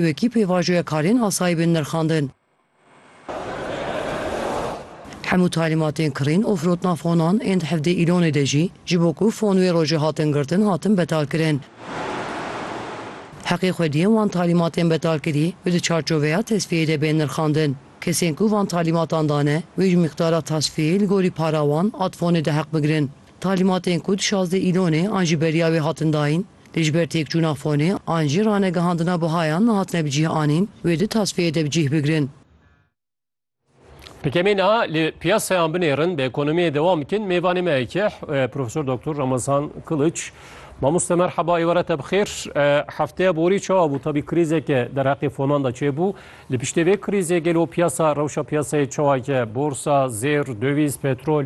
wekî pêvajoya karên asayî bên nirxandin. Hemû talîmatên kirîn û firotina fonan ên di hevdê îlonê de jî ji bo ku fon wê rojê hatin girtin hatin betalkirin. Heqê xwediyên wan talîmatên betalkirî û di çarçoveya tesfiyeyê de bên nirxandin. Kesên ku van talîmatan dane wê ji mîqdara tasfiyeyê li gorî para wan a di fonê de heq bigirin. Talîmatên ku di şazdeh îlonê an ji beriya wê hatin dayîn, Lê ji ber têkçûna fonê an jî ranegihandina bihayan nehatine bi cih anîn, wê di tasfiyeyê de bi cih bigirin. Pkmê niha li piyasayan binêrin, bi ekonomiyê dewam bikin, mêvanê me yekê Profesor Doktor Ramazan Kiliç. Mamoste merheba êware te bixêr. Hefteya borî çawa bû? Tabî krîzeke derheqê fonan de çêbû. Li piştê vê krîzê gelo piyasa, rewşa piyasayê çawa ye? Borsa, zêr, döviz, petrol?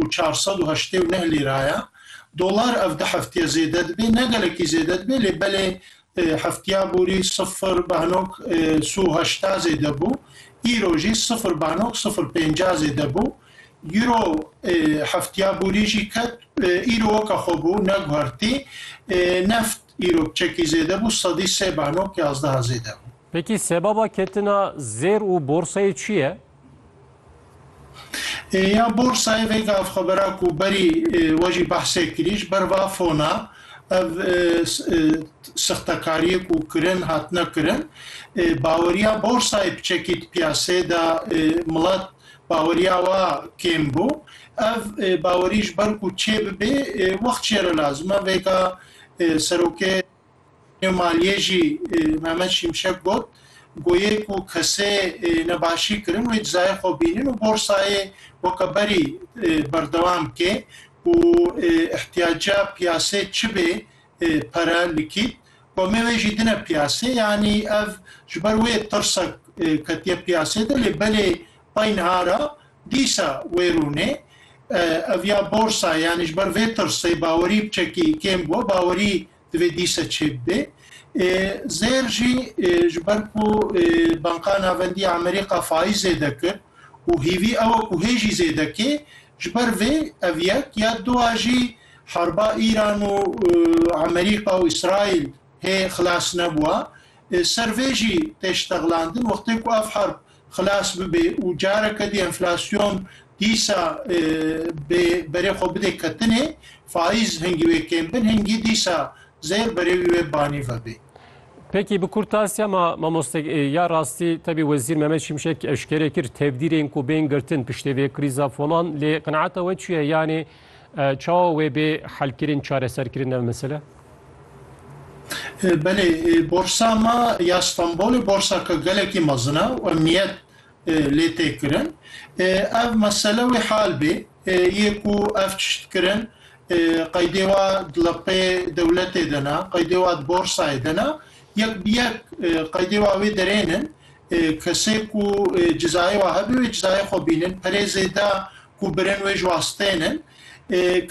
û çar sed û heştê û neh lîra ye. Dolar ev di heftiye zêde dibe, ne gelekî zêde dibe lê belê heftiya borî sifir behnok si û heşta zêde bû, îro jî sifir behnok sifir pênca zêde bû. Euro heftiya borî jî ket, îro weke xwe bû, neguhertî. Neft îro çekî zêde bû, sedî sê behnok yazdeha zêde bû. Peki sebaba ketina zêr û borsayê çi ye? Ya borsayê vê gavxebera ku berî we jî behsê kirî ji ber va fona ev sixtekariyê ku kirin hatine kirin baweriya borsayê bi çekî di piyaseyê de milet baweriya wa kêm bû. Ev bawerî ji ber ku çêbibê wext jê re lazim e vêga serokê. Nêw maliyê jî Mehmet Şimşek got, Goyê ku kesê nebaşî kirin wê cizayê xwe bînin û borsayê weke berî berdewam bike ku îhtiyaca piyasê çi bê pere, likît, komê wê jî dine piyasê. Yanî ev ji ber wê tirsek ketiye piyasê de lê belê pay niha re Dîsa wê rûnê ev ya borsa yanî ji ber vê tirsê bawerî biçekî kêm bû bawerî divê dîsa çêbibe zêr jî ji ber ku Banka Navendî ya Amerîka faiz zêde kir û hîvî ew e ku hê jî zêde kê ji ber vê ev yek ya du a jî harba Îran û Amerîka û Îsraîl hê xilas nebûa ser vê jî tê ştexlandin wextê ku ev harb xilas bibe û careke dî enflasyon dîsa bi berê xwe bide ketinê, faiz hingî wê kêm bin, hingî dîsa zêr berê wî wê banî vebe. Peki bi kurtasiya ma mamoste ya rastî tevî Wezîr Mehmet Şimşek eşkere kir tevdîrên ku bên girtin piştê vê krîza folan lê qenaeta we çi ye yanê Çawa wê bê helkirin, çareserkirin ev mesele? Belê, borsa ma ya Stenbolê borsaka gelekî mezin e û emniyet lê tê kirin. Ev mesele wê hal bê, yê ku ev tişt kirin qeydê wa di lepê dewletê de ne, qeydê wa di borsayê de ne, yek bi yek qeydê wa wê derên in. Kesê ku cizayê wa hebe wê cizayê xwe bînin. Perê zêde ku birên wê ji wastên in,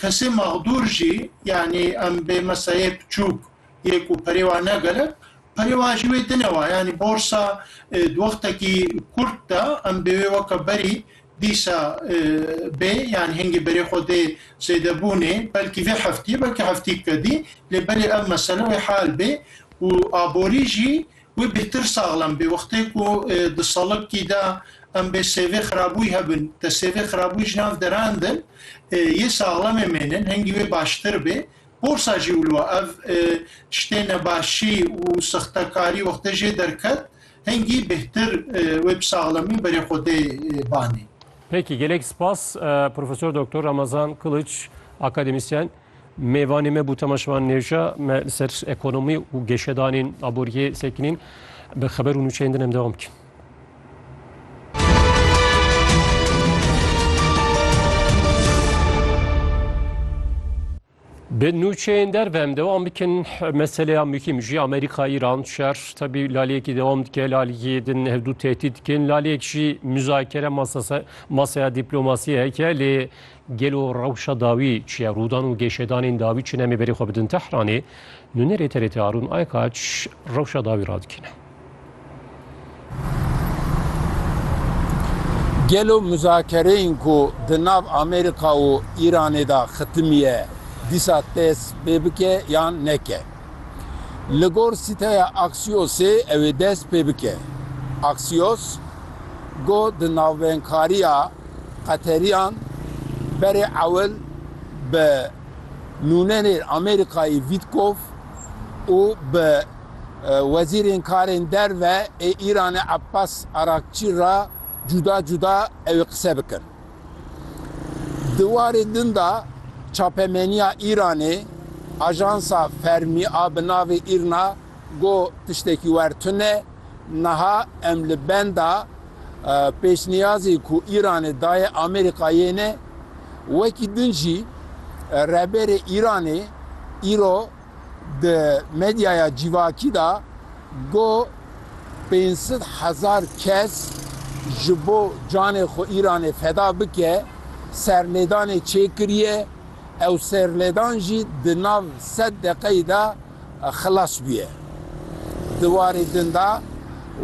kesê maxdûr jî yanî em bê mesayê piçûk yê ku perê wa ne gelek, perê wa jî wê dine wa yanî borsa di wextekî kurt de em bê wê weke berî dîsa bê yanî hingê berê xwe dê zêdebûnê belkî vê heftî belkî heftî kedî lê belê ev mesele wê hal bê û aborî jî Wê bêhtir saxlem bê. Wextê ku di salibkî de em bê sêvê xirabûyî hebin, te sêvê xirabûyî ji nav derandin, yê saxlemê mênin, hingî wê baştir bê. Porsa jî wilo e. Ev tiştê nebaşî û sextekarî wextê jê derket, hingî bêhtir wê bi saxlemî berê xwe dê banê. Peki, gelek spas Profesor Doktor Ramazan Kılıç, akademisyen. Mêvanê me bû Tema Şivan Nêvca, me li ser ekonomî û geşedanên aboriyê sekinîn bi xeber û nûçeyên din em dewam bikin. Bi nûçeyên derve em dewam bikin meseleya mûkîm jî Amerîka Îran şer tebî laliyekî dewam dike laliyê din hevdû tehdît dikin laliyek jî muzakere masaya dîplomasiyê heke lê Gelo rewşa dawî çi ye? Rûdan û gêşedanên dawî çi ne? Em ê berê xwe bidin Tehranê. Nûnerê TRT Arûn Aykaç rewşa dawî radikîne. Gelo muzakereyên ku di nav Amerîka û Îranê de xitimiye dîsa dest pê bike yan neke? Li gor sîteya Axiosê ew ê dest pê bike. Axios, ku di navbeynkariya Qeterîyan berê ewil bi nûnerên Amerîkayê Vîtkov û bi wezîrên karên derve ê Îranê Abbas Arakçî re cuda cuda ewê qise bikin. Di warê din de çapemeniya Îranê, ajansa fermî a bi navê Îrna, Got, Tiştekî wer tune, niha em li benda pêşniyazê ku Îranê daye Amerîkayê ne. Wekî din jî Rehberê Îranê îro di medyaya cîvakî de got, Pênc sed hezar kes ji bo canê xwe Îranê feda bike serlêdanê çêkiriye, ew serlêdan jî di nav sed deqeyî de, xilas bûye. Di warê din de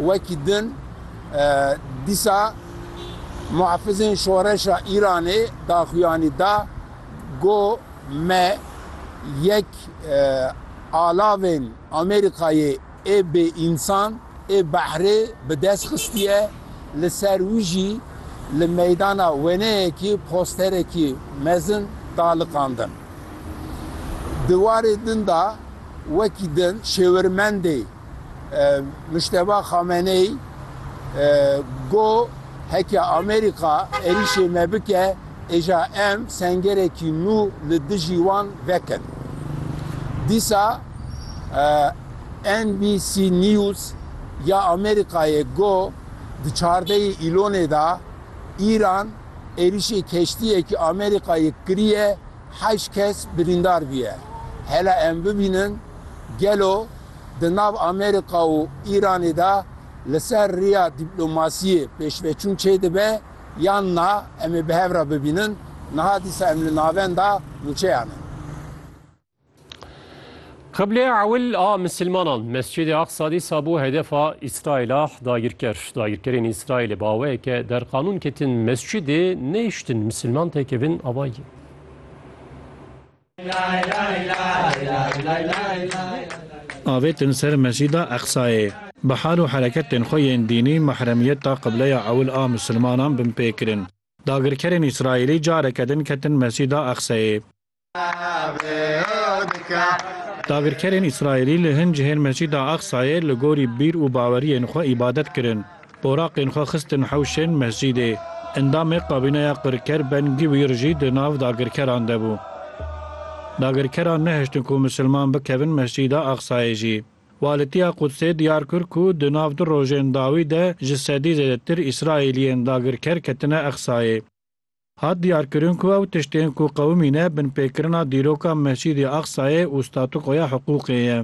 wekî din dîsa muhafizên şoreşa Îranê daxuyanî da ku me yek alavên Amerîkayê ê bêînsan ê behrê bi dest xistiye, li ser wî jî li meydana weneyekî posterekî mezin da liqandin. Di warê din de wekî din şêwirmendê Mujteba Xameneî got, Heke Amerîka êrîşê me bike êja em sengerekî nû li dijî wan vekin. Dîsa NBC News ya Amerîkayê got, Di çardeyê Îlonê de Îran, Êrişê keştiyekî Amerîkayê kiriye heşt kes birîndar bûye. Hele em bibînin gelo di nav Amerîka û Îranê de li ser riya dîplomasiyê pêşveçûn çê dibe yan na em ê bi hev re bibînin niha dîsa em li navenda mûçeyan in. Qiblê ewil a misilmanan Mescîdê Aqsa dîsa bû hedefa Îsraîl a dagirker. Dagirkerên Îsraîlê bi awayeke derqanûn ketin mescîdê nehiştin misilman têkevin avayî. Avêtin ser Mescîda Aqsayê. Bi hal û hereket tên xwe yên dînî mahremiyeta qibleya ewil a misilmanan binpêkirin. Dagirkerên Îsraîlî careke din ketin Mescîda Aqsayê. Dagirkerên Îsraîlî li hin cihên Mescîda Aqsayê li gorî bîr û baweriyên xwe îbadet kirin. Oraqên xwe xistin hewşên mescîdê. Endamê kabîneya qirker Ben Gîwîr jî di nav dagirkeran de bû. Dagirkeran nehiştin ku misilman bikevin Mescîda Aqsayê jî. Walîtiya Qudsê diyar kir ku di nav du rojên dawî de ji sedî zêdetir Îsraîliyên dagirker ketine Aqsayê. Hat diyarkirin ku ew tiştên ku qewimîne binpêkirina dîroka Mescîdê Aqsayê û statukoya hiqûqê ye.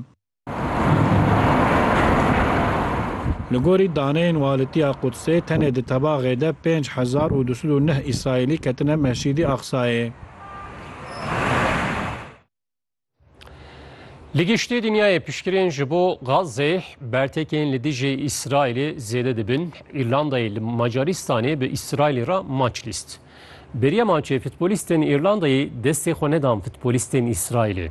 Li gorî daneyên walîtiya Qudsê tenê di tebaxê de pênc hezar û du sed û neh Îsraîlî ketine Mescîdê Aqsayê. Li giştî dinyayê piştgirên ji bo Gazê bertekên li dijî Îsraîlê zêde dibin. Îrlandayê li Macarîstanê bi Îsraîlê re maç lîst. Beriya maçê futbolîstên Îrlandayê destê xwe nedan futbolîstên Îsraîlê.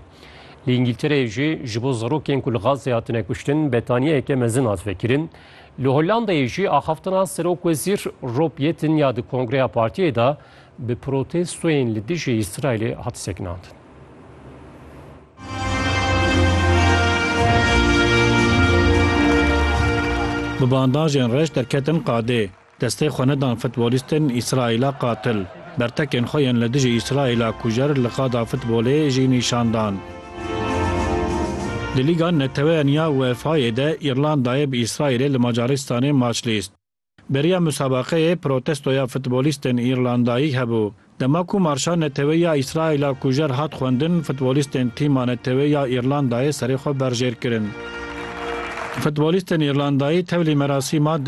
Li Îngîltereyê jî ji bo zarokên ku li Gazê hatine kuştin betaniyeyeke mezin hat vekirin. Li Hollandayê jî axaftina serokwezîr Rob Yetten ya di kongreya partiyê de bi protestoyên li dijî Îsraîlê hat sekinandin. Bi bandajên reş derketin qadê. Destê xwe nedan futbolîstên Îsraîla qatil. Bertekên xwe yên li dijî Îsraîla kujer li qada futbolê jî nîşan dan. Di Lîga Neteweyan ya UEFA'yê de Îrlandayê bi Îsraîlê li Macaristanê maç lîst. Beriya musabaqeyê protestoya futbolîstên Îrlandayî hebû. Dema ku marşa neteweyî ya Îsraîla kujer hat xwendin, futbolîstên tîma neteweyî ya Îrlandayê serê xwe berjêr kirin. Futbolîstên Îrlandayî tevlî merasîma